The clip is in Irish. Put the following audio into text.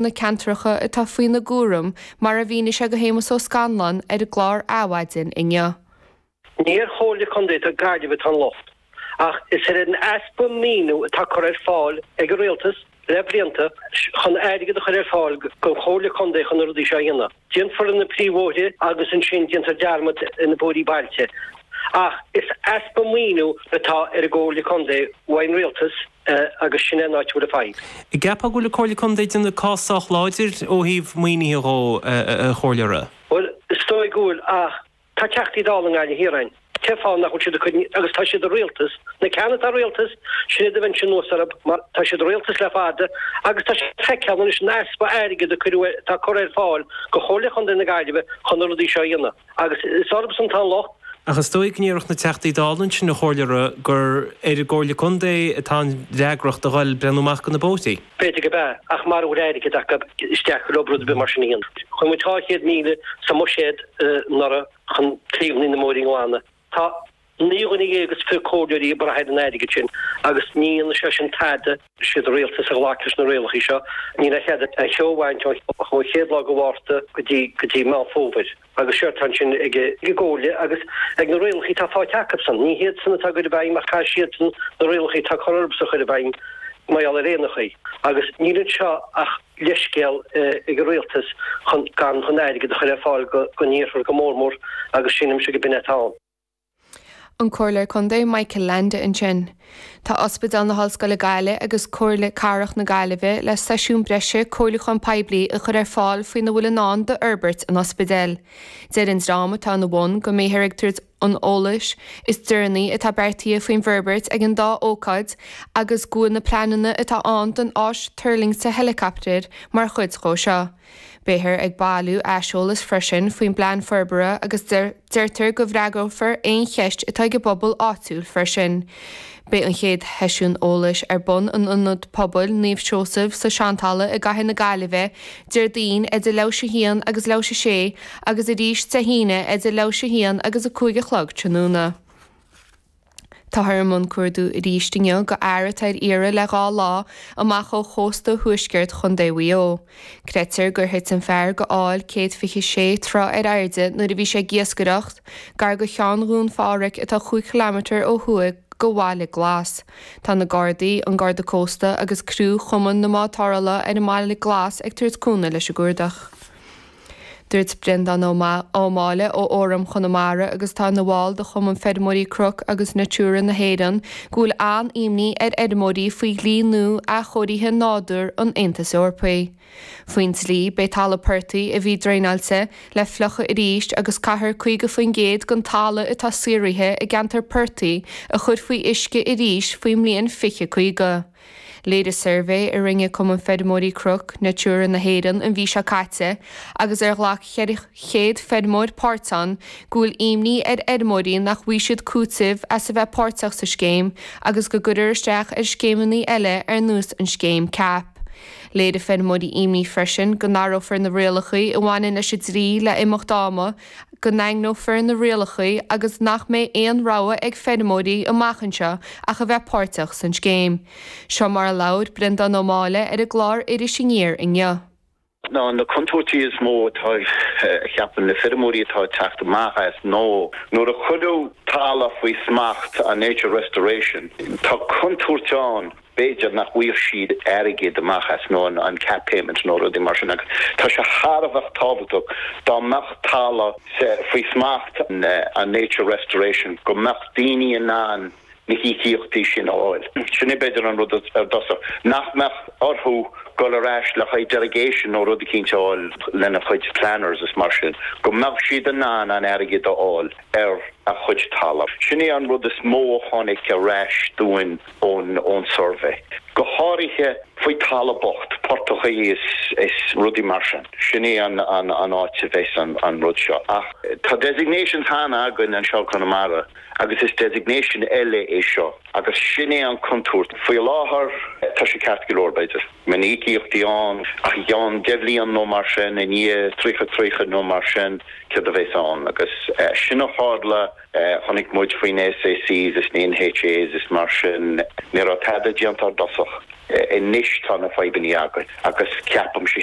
na ceantracha atá faoina gcúram, mar a mhínigh sé do Shéamus Ó Scanláin ar an gclár Adhmhaidin inniu. Ní ar Chomhairle Contae Gaillimh atá an locht, ach is ar an easpa maoiniú atá curtha ar fáil ag an Rialtas le blianta chun airgead a chur ar fáil don Chomhairle Contae chun na rudaí seo a dhéanamh. Déanfar na príomhbhóithre agus ansin déantar dearmad ar na bóithrí bailte. Ach is easpa maoiniú atá ar an gComhairle Contae uaidh an Rialtas. agus sin é an áit a bhfuil an fadhb. gceapfá go bhfuil an Comhairle Contae ag déanamh cás sách láidir ó thaobh maoinithe dhó, a Chomhairleora. Bhuel, is dóigh go bhfuil ach tá Teachtaí Dála i nGaillimh Thiar a'inn. Cén fáth nach bhfuil siad ag cur, agus tá siad i rialtas, na ceann atá i rialtas, sin iad a bheinnse anuas orthub mar tá siad i rialtas le fada agus tá siad ag feiceáil anois an easpa airgead a cuireadh, atá curtha ar fáil go Chomhairle Chontae na Gaillimhe chun na rudaí seo a dhéanamh. agus is orthubsan atá an locht. Ach is dóigh go ndéarfadh na Teachtaí Dála ansin, a Chomhairleora, gur ar an gComhairle Contae atá an fhreagracht a ghoil ag breathnú amach go na bóithrí. B'fhéidir gob ea, ach mara bhfuil airgead acu is deacair dhóib rud ar bith mar sin a dhéanamh. Chuir muid 200,000 sa mbuiséad anuraidh chun taobhannaí na mbóithrí a ghlanadh. Tá naoi dhuine dhéag is fiche comhairleoirí ag brath ar an airgead sin agus ní dhéanann sé sin tada. siad an Rialtas a ghlac leis na rialacha seo, níl aon chead aon cheo a bhaint ó chéad lá de Mhárta go dtí go dtí Meán Fómhair. Agus séard atá ansin ag an gComhairle agus ag na rialacha atá faighte acusan. Ní hiadsan atá á gcur i bhfeidhm ach caithfidh siadsan na rialacha atá curtha orthusan a chur i bhfeidhm mar gheall ar aon chaoi. Agus níl anseo ach. leithscéal ag an rialtas chun gan chun airgead a chur ar fáil gon iarthar go mór mór agus sílimse gob in é atá ann. an Comhairleoir Contae Michael Leainde ansin. Tá Ospidéal na hOllscoile Gaillimh agus Comhairle Cathrach na Gaillimhe le seisiún breise comhairliúcháin poiblí a chur ar fáil faoina bhfuil i ndán d'fhorbairt an ospidéil. Deir an dream atá ina bhun go mbeifear ag tabhairt. an eolais is deireanaí atá beartaithe faoin bhforbairt ag an dá ócáid agus go bhfuil na pleananna atá ann don áis tuirlingte heileacaptair mar chuid dhó seo. Beifear ag bailiú aiseolas freisin faoin bplean forbartha agus deirtear go bhfreagrófar aon cheist atá ag an bpobal áitiúil freisin. Beidh an chéad sheisiún eolais ar bun in Ionad Pobail Naomh Seosamh sa tSeantalamh i gCathair na Gaillimhe Déardaoin, idir leathuair tar éis a 1 agus leathuair tar éis a 6, agus arís Dé hAoine, idir leathuair tar éis a 1 agus a 5 a chlog tráthnóna. Táthar i mbun cuardú arís inniu go fhear atá ar iarraidh le dhá lá amach ó chósta thuaisceart Chontae Mhaigh Eo. Creidtear gur thit an fear go aill 126 troigh ar airde nuair a bhí sé ag iascaireacht gar go Cheann Dhún Phádhraic atá 5 km ó thuaidh go Bhaile Glas. Tá na Gardaí, an Garda Cósta agus criú Chumann na mBád Tarrthála ar an mBaile Glas ag tabhairt cúnamh leis an gcuardach. Dúirt Breandán Ó Máille ó Fhóram Chonamara agus atá ina bhall de Chumann Feirmeoirí Cnoc agus Natura na hÉireann go bhfuil an-imní ar fheirmeoirí faoi dhlí nua athchóirithe nádúr an Aontais Eorpaigh. Faoin dlí, beidh talamh portaigh a bhí draenáilte, le fliuchadh arís, agus caithfear 50% den talamh atá saothraithe i gceantar portaigh a chur faoi uisce arís faoin mbliain 2050. Léirigh suirbhé a rinne Cumann Feirmeoirí Cnoc Natura na hÉireann an mhí seo caite, agus ar ghlac 400 feirmeoir páirt ann, go bhfuil imní ar fheirmeoirí nach bhfaighidh siad cúiteamh as a bheith páirteach sa scéim agus go gcuirear isteach ar scéimeanna eile ar nós an scéim cap. Léirigh feirmeoirí imní freisin go n-athrófar na rialacha a bhaineann leis an dlí le himeacht ama, go ndaingneofar na rialacha agus nach mbeidh aon rogha ag feirmeoirí amach anseo ach a bheith páirteach san scéim. Seo mar a labhair Breandán Ó Máille ar an gclár Iris Aniar inniu. Na contúirtí is mó atá a cheapann na feirmeoirí atá ag teacht amach as ná nuair a chuirfear talamh faoi smacht an Nature Restoration, tá contúirt ann b'fhéidir nach bhfaighidh siad airgead amach as nó an cap payment nó rudaí mar sin agus tá sé thar a bheith tábhachtach dá mbeadh talamh faoi smacht an Nature Restoration go mbeadh daoine in ann na híocaíochtaí sin a fháil. Sin é b'fhéidir an rud ar dtosach nach mbeadh orthu dul ar ais le haghaidh derogation nó rud eicínt a fháil lena chuid planners is mar sin, go mbeadh siad in ann an t-airgead a fháil ar a chuid talamh. Sin é an rud is mó a tháinig ar ais dúinn. ón suirbhé, go háirithe faoi talamh bocht, portachaí is rudaí mar sin. Sin é an áit a bheas an rud seo. Ach tá designations cheana againn anseo i gConamara agus is designation eile é seo agus sin é an contúirt. Faoi láthair tá sé ceart go leor b'fhéidir, beidh na híocaíochtaí ann ach i gceann deich bhliain nó mar sin, i ndiaidh tríocha, tríocha nó mar sin, céard a bheas ann agus sin a tharla. Chonaic muid faoi na SACs is na NHAs is mar sin, ní raibh tada déanta ar dtosach. Anois tá na fadhbanna againn agus ceapaimse